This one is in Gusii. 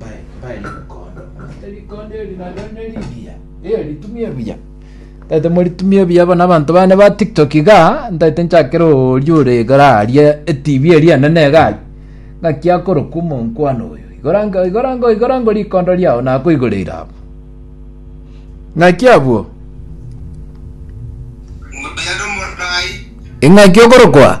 Bae, bae nemokondo. Ase rikondo eri nareo nerigiya. Eyo ritumia ebuya. Ntaete moritumia ebuya bono abanto bane ba TikTok iga, ntaete nchakere oria ore igora aria eTV eria enene iga aria. Ng'aki akoroka omonkwana oyo. Igora ngo, igora ngo, igora ngo rikondo riao nakoigoreire abo. Ng'aki abwo? Ng'aki okorokwa?